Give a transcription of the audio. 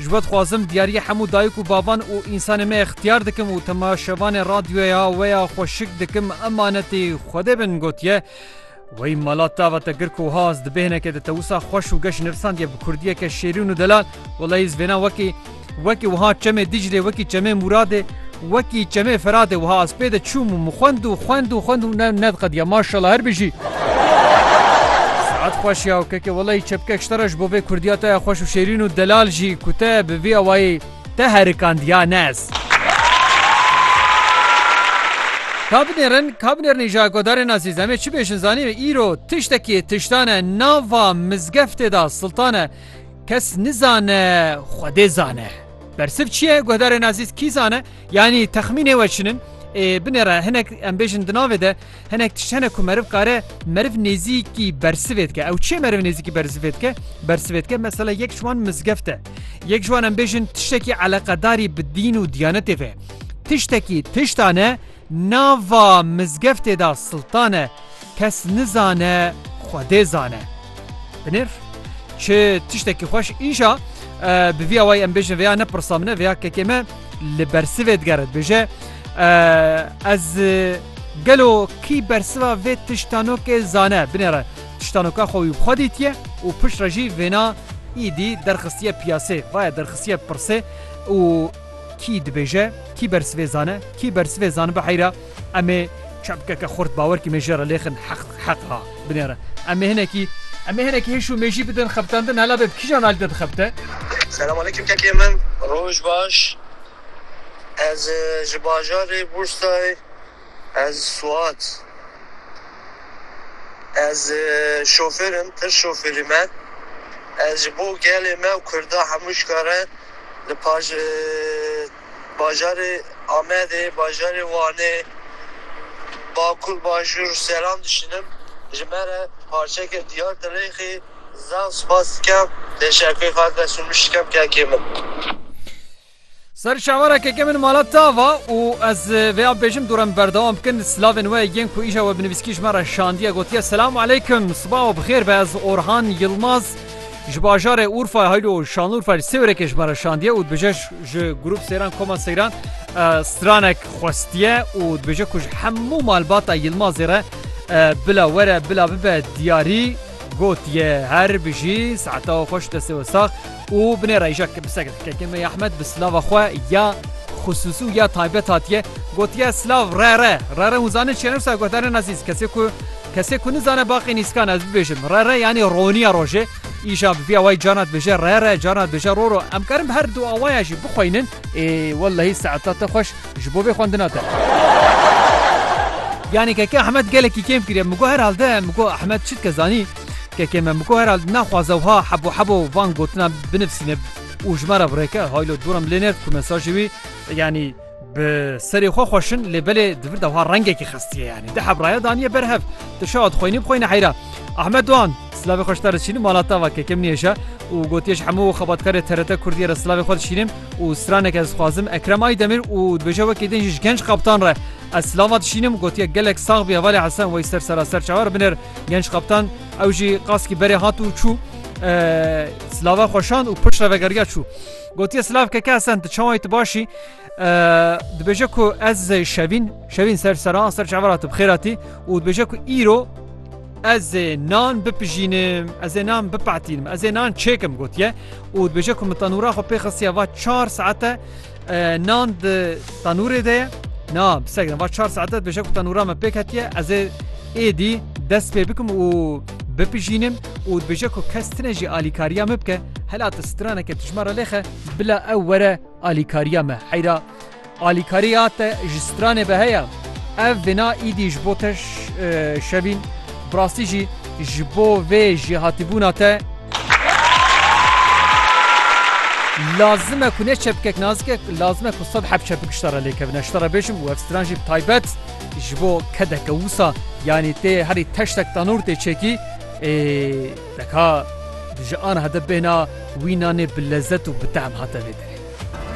Ji we dixwazim diyariyê hemû dayik û bavan û însanê me ixtiyar dikim û temaşevanê radyoya we ya xwe şik dikim emanetê Xwedê bin gotiye, Wey mala tava te girk û haz di bêhnekê de te wisa xweş û geş nivîsandiye bi kurdiyeke şêrîn û delal, welaî ez vêna wekî wekî wiha çemê Dîclê wekî çemê Mûradê Wekî çemê Firatê wiha ez pê de çûm û min xwend û xwend û xwend û ne nediqediya. Maşallah her bijî. Saet xweş ya keke welay çepkek ji te re ji bo vê kurdiya te ya xweş û şêrîn û delal jî ku te bi vî awayî te herikandiya ne ez. Ka binêrin ka binêrin îja godarên azîz em ê çi bêjin zanî me îro tiştekî tiştan e nava mizgeftê de siltan e kes nizane xwedê zane. Bersiv çi ye? Guhdarê Nazîs kî zane? Yanî texmînê we çin in? Ê binê re hinek em bêjin di navê de hinek tişt hene ku meriv kare meriv nêzîkî bersivê dike. Ew çi meriv nêzîkî bersivê dike? Bersivê dike mesela yek ji wan mizgeft e. Yek ji wan em bêjin tiştekî eleqedarî bi dîn û diyanetê ve. Tiştekî tiştane Nava mizgeftê da siltan e, kes nizane Xwedê zane. Binêr, çi tiştekî xweş înşa bi vî awayî em bêjin vêya ne pirsa min e vêya kekê me li bersivê digere dibêje Ez gelo kî bersiva vê tiştanokê zane binêre tiştanoka xwe wî bi xwe dîtiye û piştre jî vêna îdî derxistiye piyasê vaye derxistiye pirsê û Kî dibêje, kî bersivê zane, kî bersivê zanibe heyra, em ê çepkeke xurt bawerkî mêjê re lêxin heq heq a binêre. Em ê hinekî em ê hinekî hêş û mêjî bidin xebitandin hela bê bi kîjan alî de dixebite? Selam aleykum kekê min. Roj baş. Ez ji bajarê Bursayê. Ez Suat. Ez şofêr im, tir şofêrî me. Ez ji bo gelê me û kurda hemû ji kar e li paj bajarê Amedê, bajarê Wanê, Bakur, Bajûr selam dişînim. Ji me re parçeke diyar dirêxî. Zaf spas dikim. Teşekkûr Xatir Resûl min şikem kekê min. Ser şevara keke min mala tava û ez vê an bêjim dû re min berdewam bikin silavên we yên ku îşa we binivîskî ji me re şandiye gotiye Selamu aleykum siba we bixêr be ez Orhan Yilmaz ji bajarê Urfa haylo Şanlurfa ji Sêwrekê ji me re şandiye û dibêje ji grûp sêran koma seyran stranek xwestiye û dibêje ku ji hemû malbata Yilmazê re bila were bila bibe diyarî gotiye her bijî saeta we xweş destê we sax û binê reyjek bi seg Kekê me ya Ehmed bi silava xwe ya xisûsî û ya taybet hatiye gotiye silav rere rere hûn zanin çiye wisa guhdarên ezîz kesê ku kesê ku nizane baqî nîskan ez bibêjim rere yanî roniya rojê îja bi vî awayî carna dibêje rere carna dibêje roro em karin bi her du awaya jî bixweynin ê wellehî saeta te xweş ji bo vê xwendina te yanî Keke Ehmed gelekî kêm kiriye min got herhalde min got Ehmed çi dike zanî Kekê me Miko herald naxwaze wiha hebo hebo van gotinan binivîsîne û ji me re birêke. Haylo dûr em lê nêrt ku mesajê wî yanî bi serê xwe xweş in lê belê di vir de wiha rengekî xestiye yanî di hevraya daniye ber hev. Tu şawa dixwînî bixwîne heyra. Ahmet Doğan Silavê xwe ji te re dişînim mala te va kekem nihêje û gotiye ji hemû xebatkarê TRT Kurdiyê re silavê xwe dişînim û stranek ez dixwazim Ekrem Aydemir û dibêje wekî din jî ji genc kaptan re ez silava dişînim gotiye gelek sax bî hevalê Hesen Weyser sera ser çawa re binêr Genç kaptan ew jî qaskî berê hat û çû silava xweşand û piştre vegeriya çû. Gotiye silav keke Hesen tu çawayî tu başî dibêje ku ez şevîn şevîn ser seran ser çavara tu bixêratî û dibêje ku îro ez nan bipijînim ez ê nan bipatînim ez ê nan çêkim gotiye û dibêje ku min tenûra xwe pê xistiye va çar saete Nan di tanûrê de ye. Na bi ser giran. Va çar saete dibêje ku tanûra me pêk hetiye. Ez ê êdî dest pê bikim û bipijînim û dibêje ku kes tine jî alîkariya min bike. Hela tu straneke tijma re lêxe. Bila ew were alîkariya me. Heyra alîkariya te ji stranê be heye. Ev vêna îdî ji bo te şevîn. Bi rastî jî ji bo vê jêhatîbûna te lazim e ku ne çepkek nazikek lazim e ku sed heb çepik ji te re lêkevine. Ji te re bêjim û ev stran jî bi taybet ji bo kedeke wisa yanî tê herî teştek tanûr tê çekî ê deka ji aniha de bêhna wî nanê bi lezet û bi tehm hate vê derê.